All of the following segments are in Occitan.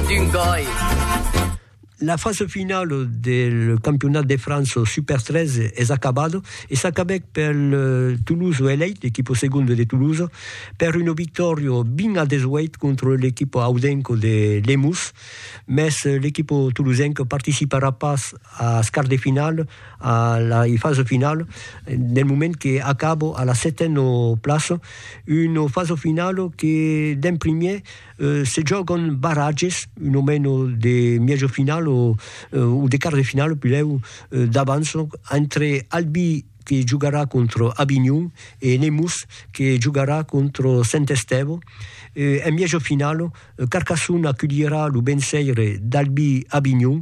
d'un gòi. La fasa finala del campionat de França Super 13 es acabada e s'acabèc pel Toulouse Elite, l'equipa segonda de Toulouse, per una victòria 20 a 18 contra l'equipa audenca de Lemús, mès l'equipa toulousenca participarà pas als quarts de finala, a la fasa finala, del moment que acaba a la setena plaça, una fasa finala que d'en primièr Se jògan barratges, un o meno de mièjo final o de quart de final, pilhèu d'abans, entre Albi que jogarà contra Avinhon e Nemours que jogarà contra Sent Estèvo. En mièjo final, Carcassona aculhirà lo bensaire d'Albi Avinhon.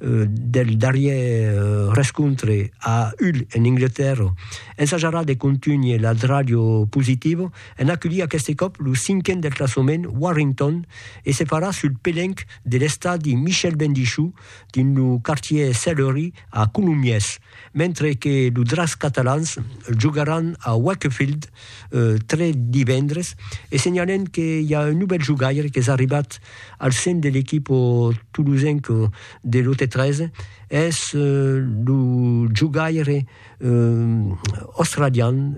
del darrièr rescontre a Hull en Anglatèrra, ensajarà de contunhir la dràlio positiva en aculhir aqueste còp lo cinquen del classament Warrington e se farà sul pelenc de l'estadi Michel Bendichou dins lo quartièr Sellerie a Colomiers. mentre que lo Dracs catalans jogaràn a Wakefield tre divendres e senhalem que i a un novèl jogaire qu'es arribat al sen de l'equip tolosenc de lo T3 es lo jogaire australian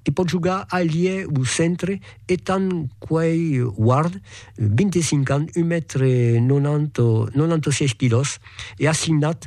que pòt jogar ailier o centre Ethan Quay Ward 25 ans, un mètre 96 quilòs e assignat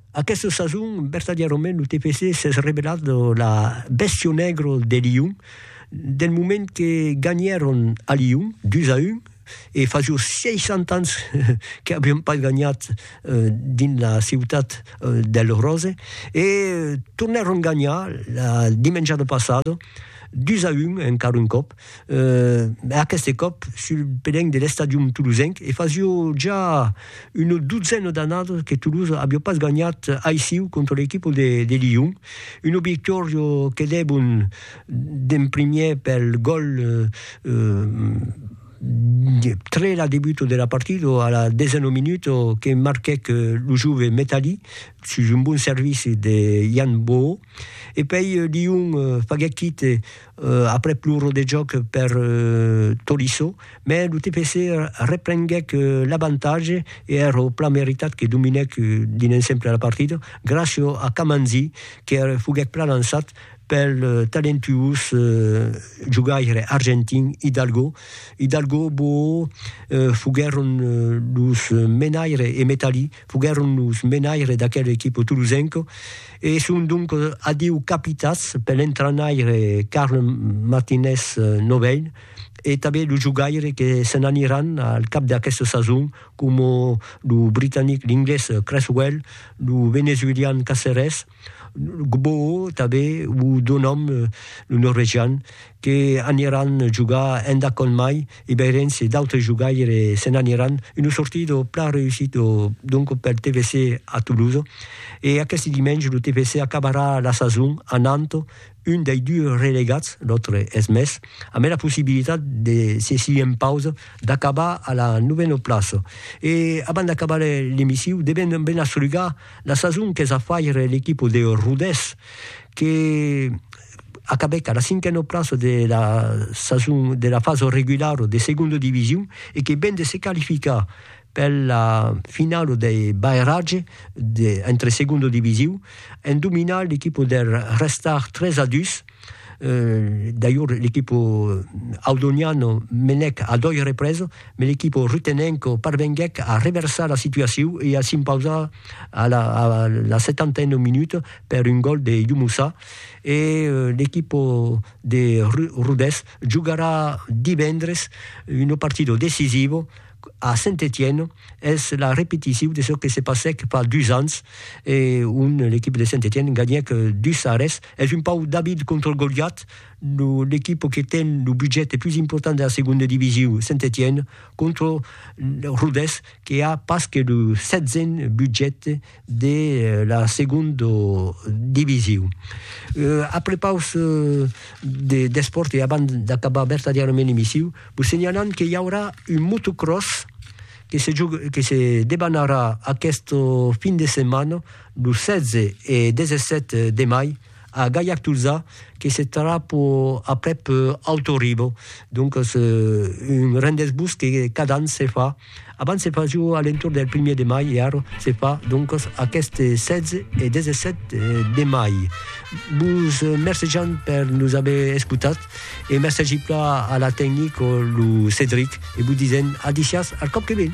Aquesta sason, vertadièrament, lo TPC s'es revelat la bèstia negra de Lion, del moment que ganhèron a Lion, 2 a 1, e fasió 60 ans que avián pas ganhat dins la ciutat del Rose, e tornèron ganhar la dimenjada passada, 2 a 1, encara un còp, aqueste còp sul pelenc de l'estadium tolosenc, e fasio ja una dotzena d'annadas que Toulouse aviá pas ganhat aissiu contra l'equipa de Lyon, una victòria que debon d'en primièr pel gòl tre la debuta de la partida a la desena minuta que marquèc lo jove Metalli sus un bon servici de Yann Bohou. E pei Lyon faguèt quite aprèp lo rodejòc per Tolisso, mè lo TPC reprenguèc l'avantatge e èra plan meritat que dominèc dins l'ensemble la partida gràcia a Kamanzi que foguèt plan lançat pel talentuós jogaire argentin Hidalgo. Hidalgo e Boo foguèron los menaires e Metalli foguèron los menaires d'aquela equipa tolosenca. E son donc adiu capitats per l'entranaire Carles Martinez Novell e tanben lo jogaire que se n'aniràn al cap d'aquesta sason coma lo britanic, l'inglés Cresswell, lo venezuelian Caceres, Gboo tanben o Donham, lo norvegian, que aniràn jogar endacònt mai Ibèriens e d'autres jogaires se n'aniràn, una sortida plan reüssida donc pel TFC a Toulouse e aqueste dimenge lo TFC acabarà la sason anant un dei dus relegats, l'autre es Metz, amé la possibilitat de se si en pausa d'acabar a la novena plaça. E abans d'acabar l'emissiu devèm ben asrugar la sason qu'es a faire l'equipa de Rodés que, acabèc a la cinquena plaça de la sason de la fasa regulara de segonda division e que ven de se qualificar per la finala dei barratge de entre segonda division en dominar l'equipa der Restart 3 a 2. Dajor l'equipa audoniana menèc a doi represa, me l'equipa rutenenca parvenguèc a reversar la situacion e a s'impausar a la setantena minuta per un gòl de Youmoussa. E l'equipa de Rodés jogarà divendres una partida decisiva a Saint-Étienne. Es la repeticion de çò que se passèc fa dus ans e on l'equipa de Saint-Étienne ganhèc 2 a res. Es un pauc David contra Goliat, l'equipa que ten lo budget pus important de la segonda division, Saint-Étienne, contra Rodés que a pas que lo setzen budget de la segonda division. A prepaus d'espòrt e abans d'acabar vertadièrament l'emissiu, vos senhalam que i aurà un motocròs que se debanarà aquesta fin de setmana, lo 16 e 17 de mai, A Gaillac-Tolzà, que se trapo aprèp Alto Rivo, doncas un rendez-vous que cada an se fa, abans se fasiu a l'entorn del primièr de mai e ara se fa doncas aqueste 16 e 17 de mai. Vos mercejam per nos aver escotat e mercegi pla a la tecnic, lo Cedric, e vos disèm a disiás al còp que ven.